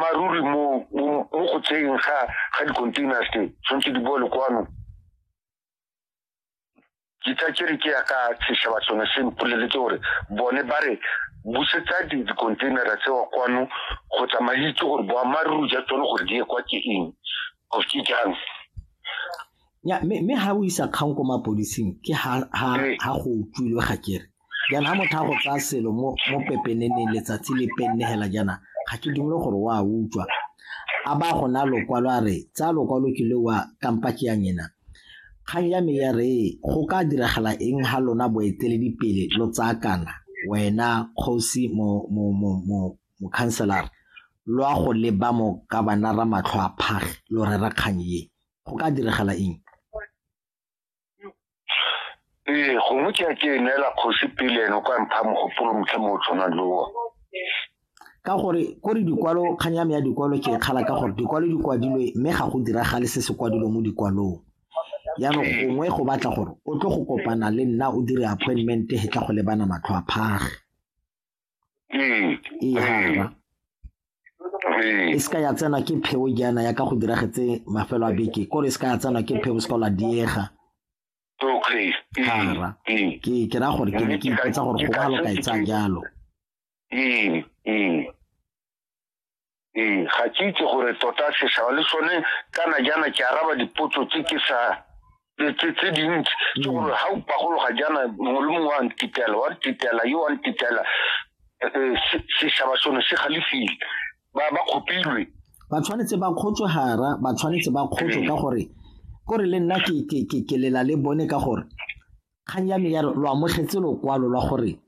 maruri mo mo go tseyeng ga ga di-containers tse tshwanetse di bole kwano ke tsa ke re ke ya ka setšhaba sone se mpoleletse gore bone ba re busetsa di-containera tseo kwano go tsamaitse gore boammaaruri ja tsone gore di ye kwa ke eng of ke jang ya mme ha o isa kgang ko mapodising ke ha ha ha go utlwilwe ga kere jaana ha motho a go tsaya selo mo pepeneneng letsatsi le pennegela jaana ga ke dumele gore o a utswa a ba go na lokwalo a re tsaya lokwalo ke le wa kampa ke yang ena kgang ya me ya re go ka diragala eng ha lona boeteledipele lo tsakana wena kgosi mokhanselara lo a go leba mo ka bana ra matlho a phage lo rera kgang ye go ka diragala eng ee gongwe ke a ke e neela kgosi pele ene o ka mpha mogopolo motlha mo o tshwanang lewa ka gore ko re dikwalo kgang ya me ya dikwalo ke e kgala ka gore dikwalo di kwadilwe mme ga go diragale se se kwadilwe mo dikwalong jaanong gongwe go batla gore o tlo go kopana le nna o dire appointment he tla go lebana matlho a phage ihana e se ka ya tsena ke pheo jaana ya ka go diragetse mafelo a beke kore e se ka ya tsena ke pheo se ka la diega gara ke ke ra gore ke ne ke ipotsa gore go balo ka e tsaya jalo ee ga ke itse gore tota setšhaba le sone kana jaana ke araba dipotso tse ke sa tse dintsi ke gore ga o pagologa jaana mongwe le mongwe wa ntitela wa ntitela yo wa ntitela eh, eh, setšhaba sone se galefile ba kgopilwe ba tshwanetse ba kgotswe gara ba tshwanetse ba kgotswe ka gore kore le nna ke lela le bone ka gore kgang ya me ya lo amogetse lokwalo lwa gore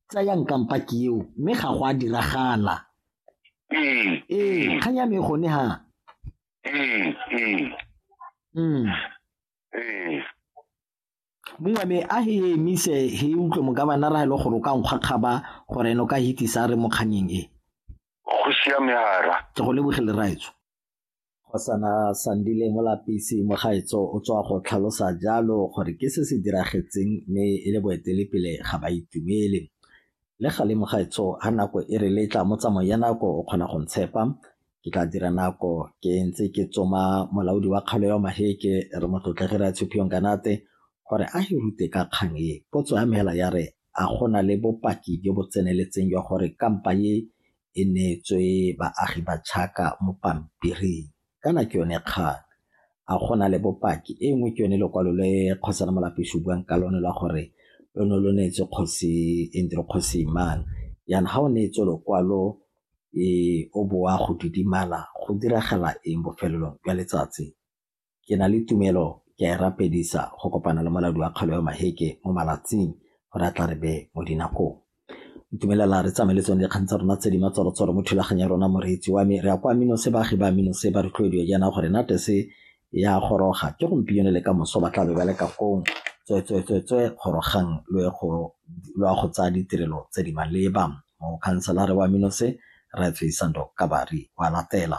tsayang kampaki eo mme ga go a diragala ee ee kgang ya me gone ha ee ee mm. ee mongwe me a he emise he utlwe mokabana ra e le gore o ka nkgwa kgaba gore ene o ka hitisa re mo kganyeng e go siame hara ke go lebogele raetso Kgosana Sandile Molapisi Mogaetso o tswa go tlhalosa jalo gore ke se se diragetseng mme e le boetelepele ga ba itumele. Le gale Mogaetso ha nako e re letla mo tsamaong ya nako o kgona go ntshepa ke tla dira nako ke ntse ke tsoma molaodi wa kgaolo ya Maheke re motlotlege re a Tshuphiyong Kanate gore a e rute ka kgang e potso ya mela ya re a gona le bopaki jo bo tseneletseng jwa gore kampa ye e neetswe baagi ba Chaka mo pampiring kana ke yone kgang a go na le bopaki e nngwe ke yone lekwalo le kgosana molapeshi buang ka lone la gore lo ne lo neetse kgosi e ntse re kgosi imang yana ga o neetse lokwalo e o boa go didimala go diragala eng bofelelong jwa letsatsi Ke na le tumelo ke a e rapedisa go kopana le molaodi wa kgaolo ya Maheke mo malatsing gore a tla re be mo dinakong. Ntumelela re tsamaye le tsone dikgang tsa rona tse di matsorotsoro mo thulaganyo ya rona moreetsi wa me. Re ya kwa Minose baagi ba Minose ba rotloediwa jaana gore natese ya goroga ke gompieno le ka moso ba tla be ba le ka kong tswetswetswetswe gorogang lo ye go lo ya go tsaya ditirelo tse di maleba. Mokhanselara wa Minose Rre Tsweisando Kabari wa latela.